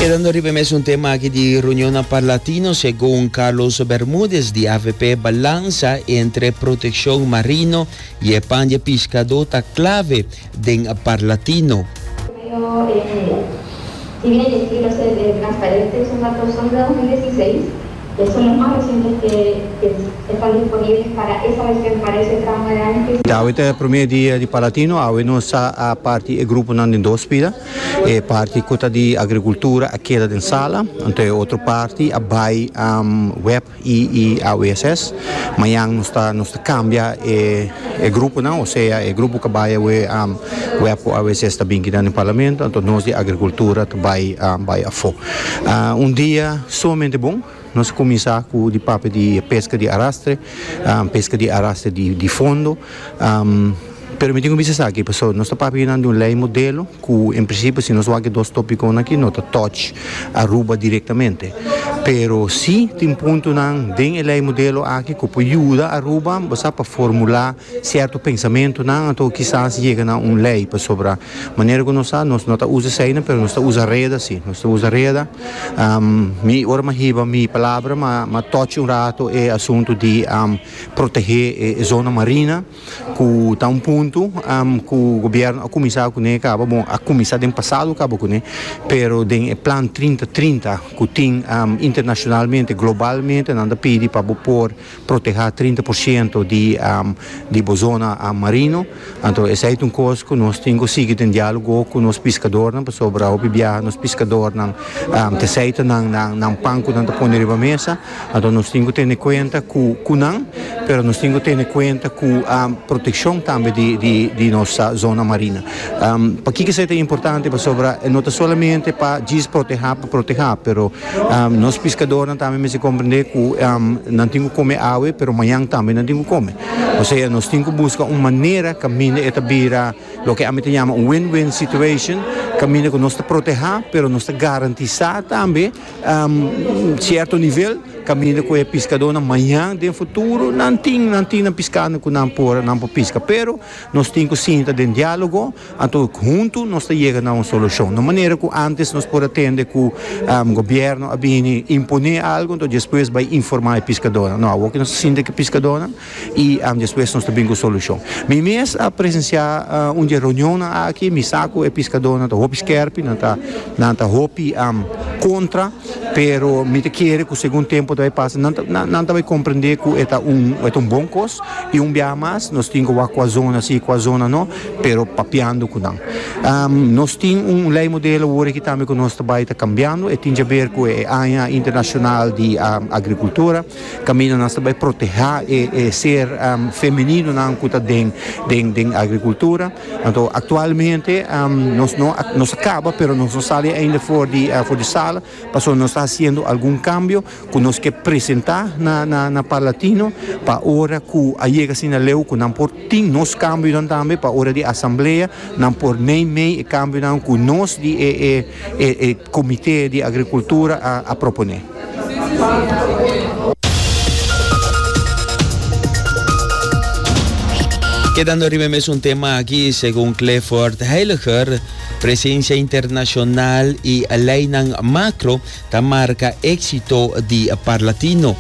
Quedando riba mes un tema aquí di reunionnan par latinos, segun Carlos Bermudez di AVP, balansa entre proteccion marino y e pan di e piscador ta clave den par latino. E solo mas reciente te estar disponible para esa vez que me parece tra un araña que. Dawit e prome dia di Palatino, awe nos sa a parti e gruponan den dos pida, e parti cu ta di agricultura a keda den sala, anto e otro parti a bay web y AWSS. Mañan nos ta nos ta cambia e e gruponan, o sea e grupo cu bay awe Webco a veces ta bin kita den Parlamento, anto nos di Agricultura ta bay bay afo. Un dia sumamente bon, nos a cuminsa cu di papia di pesca di arrastre, pesca di arrastre di fondo. Pero mi tin ku bisa esaki pasobra nos ta papia nan di un lei modelo ku en prinsipio si nos wak e dos topikonan aki no ta touch Aruba direktamente. Pero si tin puntonan den e lei modelo aki ku por yuda Aruba basa pa formulá sierto pensamentunan anto kisas yega na un lei pasobra manera ku nos sa nos no ta usa eseinan pero nos ta usa reda si, nos ta usa reda. Mi ora m'a hiba mi palabra m'a touch un rato e asuntu di protegé e zona marina. ku ta un punto ku gobierno a kuminsá kuné i kaba bon a kuminsá den pasado kaba kuné pero den e plan trinta trinta ku tin internashonalmente globalmente nan ta pidi pa bo por protehá trinta por shento di bo zona marino anto esei ta un kos ku nos tin ku sigui den dialogo ku nos piskadornan pasobra hopi biaha nos piskadornan ta seita nan pan ku nan ta pone riba mesa. Anto nos tin cu tene cuenta cu cu nan, pero nos tin cu tene cuenta cu proteccion tambe di di di nos zona marina. Pakico esey ta importante? Pasobra e no ta solamente pa djis proteha pa proteha, pero nos piscadornan tambe mester comprende cu nan tin cu come awe, pero mañan tambe nan tin cu come. Osea nos tin cu busca un manera caminda e ta bira loke ami ta yama un win-win situation, caminda cu nos ta proteha, pero nos ta garantisa tambe. Cierto nivel caminda cu e piscadornan mañan den futuro nan tin nan tin nan piscando cu nan por nan por pisca pero nos tin cu sinta den dialogo anto hunto nos ta yega na un solucion no manera cu antes nos por a tende cu gobierno a bini impone algo anto despues bai informa e piscadornan no awo cu nos ta sinta cu e piscadornan y despues nos ta bini cu solucion. Mi mes a presencia un di e reunionnan aki, mi sa cu e piscadornan ta hopi skerpi, nan ta hopi contra, pero mi ta kere cu segun tempo ta bay pasa nan ta bay comprende cu e ta un bon cos y un biaha mas nos tin cu wak cu a zona si, cu a zona no, pero papiando cu nan. Nos tin un ley modelo awor aki tambe cu nos ta bay ta cambiando, e tin djaber cu e aña internacional di agricultura. Caminda nos ta bay proteha e ser femeninonan cu ta den den agricultura. Anto actualmente nos no nos a caba pero nos no sali ainda for di for di sala pasobra nos ta haciendo algun cambio cu nos ke presenta na na na Parlatino pa ora cu a yega asina leu cu nan por tin nos cambionan tambe pa ora di asamblea nan por mey mey e cambionan cu nos di e e e comite di agricultura a a propone. Kedando riba e mesun tema aki, segun Clifford Heiliger, presensia internashonal i leinan makro ta marka éksito di Parlatino.